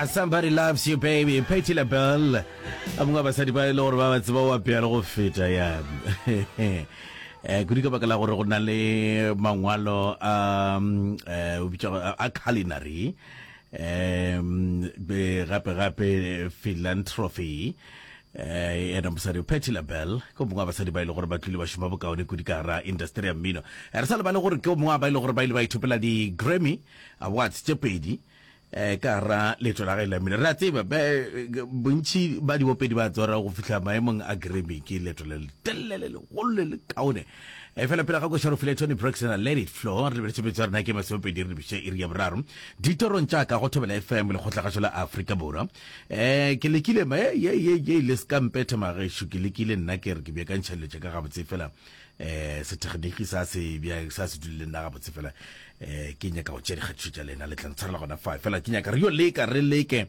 A somebody loves you baby peti label a mongwe wa basadi ba e le gore ba ba tseba wa pealo go feta ya um kudu ka baka la gore go na le mangwalo a um, eh, o bitša go- a a culinary um be- gape gape philanthropy eh ena mosadi peti label ke o mongwe wa basadi ba e le gore ba tlile ba šoma bokaone kudu ka gara industry ya mmino Eh, re sa lebale gore ke o mongwe wa ba e le gore ba ile ba ithopela di-grammy A Watts tše pedi eh, ka ra leeto la ge la mmino. Re a tseba be, bontši ba dibopedi ba tsora go fihla maemong a Grammy ke leeto le letelele le legolo le le kaone. E fela pele ga koša re file Toni Braxton a Let It Flow, re lebeletse metso ya rena ke masomepedi re lebiše iri ya boraro. Ditorong tša ka go Thobela FM lekgotlagašo la Afrika Borwa. Eh, ke lekile ma, ye, ye, ye, le ska mpetha magešo, ke lekile nna ke re ke beakantšha dilo tša ka gabotse fela eh sethegeniki sa se bja sa se dulile nna ga botse fela eh ke nyaka go tšea dikgatišo tša lena le tla ntshwarela gona fa fela ke nyaka re yo leka re leke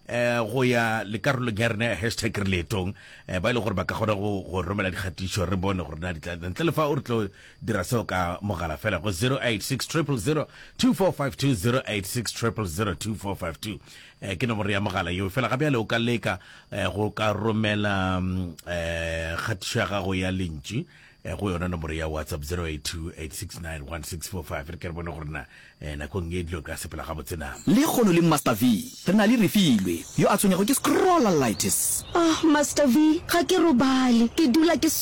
eh go ya lekarolong ya rena ya hashtag re leetong eh ba ile e gore ba ka kgona go go romela dikgatišo re bone gore na di tla ntle le fa o re tlo dira seo ka mogala fela go 0860002452 0860002452 eh ke nomoro ya mogala yo fela ga bjale o ka leka eh, go ka romela eh, kgatišo ya gago ya lentši eh, go yona nomoro ya whatsapp 0828691645 re ke re bone gore na eh, nakong e dilo ka sepela ga botsena le kgono le master v re na le refilwe yo a tshwenyego ke scrollalitis Ah, Master V, ga ke robale, ke dula ke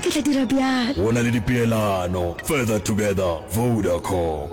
Ke tla dira bjalo. Go na le dipeelano. Further Together, Vodacom.